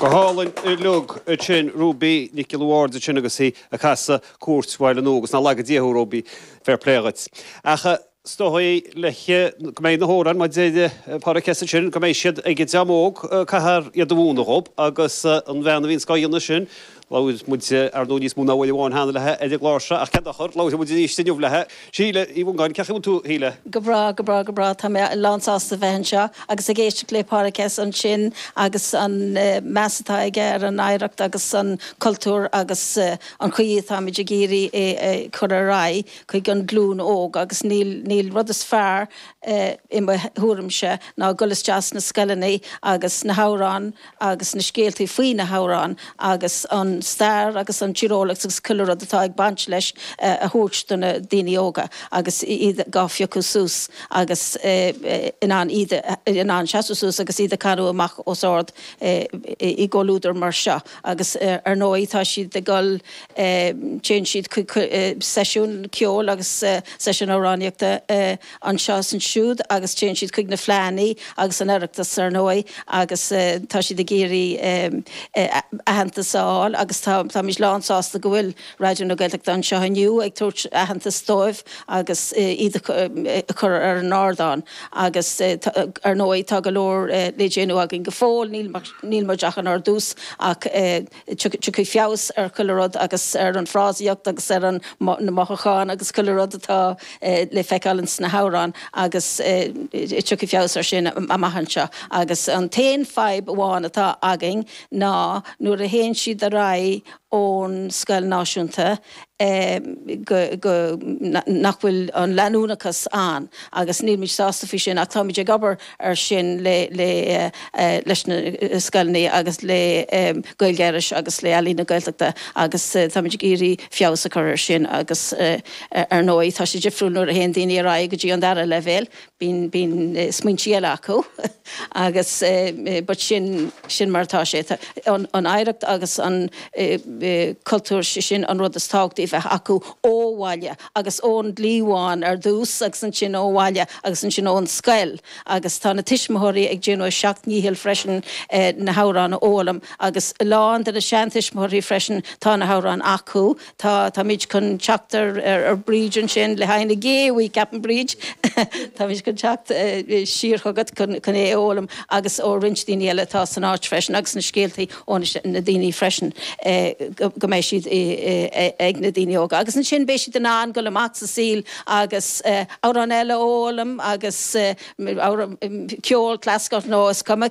Go hálainn uilig ansin Ruby Nic Giolla Bhaird ansin agus í ag casadh Cúirt Bhaile Nua agus ná lagaí Dia thú, Ruby, fair play dhuit. Ach is dóigh le go mbeidh na hamhráin mar a deir Pádraic S. ansin, go mbeidh siad ag dream óg, caithfear iad a mhúineadh dhób agus an bhean a bhíonns dhá dhéanamh sin, Labhair muid, ar ndóigh, níos mó ná uair amháin cheana léi ar an gclár seo, ach cén dochar, labharfaidh muid arís inniu léi. Síle Uí Mhongáin, cén chaoi a bhfuil tú, a Shíle? Go breá, go breá, go breá. Tá mé lán sásta a bheith anseo agus ag éisteacht le Pádraic S. ansin agus an meas atá aige ar an oidhreacht agus an cultúr agus an chaoi atáimid ag iarraidh é a chur ar aghaidh chuig an ghlúin óg agus níl, níl aon rud is fearr i mo thuairimse ná dul isteach sna scoileanna agus na hamhráin agus na scéaltaí faoi na hamhráin agus an stair agus an tíreolaíocht agus chuile rud atá ag baint leis a thabhairt do na daoine óga agus iad dhá phiocadh suas agus in ann iad, in ann seasamh suas agus iad a canadh amach os ard i gcomhluadar mar seo agus ar ndóigh tá siad ag dul, téann siad chuig seisiúin ceoil agus seisiúin amhránaíochta. anseo is ansiúd agus téann siad chuig na fleánna agus an Oireachtas, ar ndóigh, agus tá siad ag iarraidh aitheantas a fháil agus táimid lánsásta go bhfuil Raidió na Gaeltachta anseo inniu ag tabhairt aitheantas dóibh agus iad a chur ar an ardán agus, ar ndóigh, tá go leor le déanamh againn go fóill, níl muid ach inár dtús ach. Tiocfaidh feabhas ar chuile rud agus ar an frásaíocht agus ar na mothúcháin agus chuile rud atá le feiceáil ins na hamhráin agus tiocfaidh feabhas ar sin amach anseo. Agus an t-aon fadhb amháin atá againn ná nuair a théann siad ar aghaidh ón scoil náisiúnta, go, nach bhfuil an leanúnachas ann agus nílimid sásta faoi sin ach táimid ag obair ar sin le, leis na scoileanna agus le Gaeilge Iorrais agus le Ealaín na Gaeltachta agus táimid ag iarraidh feabhas a chur air sin agus ar ndóigh tá sé difriúil nuair a théann daoine ar aghaidh go dtí an dara leibhéal, bíonn smaointí eile acu agus but sin sin mar atá sé. Tá an oidhreacht agus an cultúr sé sin an rud is tábhachtaí a bheith acu ó bhaile agus ón gcliabhán ar dtús agus ansin ó bhaile agus ansin ón scoil agus tá na tuismitheoirí ag déanamh a seacht ndícheall freisin na hamhráin a fhoghlaim agus a lán de na seantuismitheoirí freisin tá na hamhráin acu Tá, táimid chun teacht ar Breege ansin le haghaidh na Gé Bhuí, ceapaim, Breege, táimid chun teacht siar chugat chun é a fhoghlaim agus ó roinnt daoine eile atá san áit freisin agus na scéaltaí ó na daoine freisin go mbeidh siad ag na daoine óga agus ansin beidh siad in ann dul amach sa saol agus amhrán eile a fhoghlaim agus ceol, clasaiceach nó is cuma.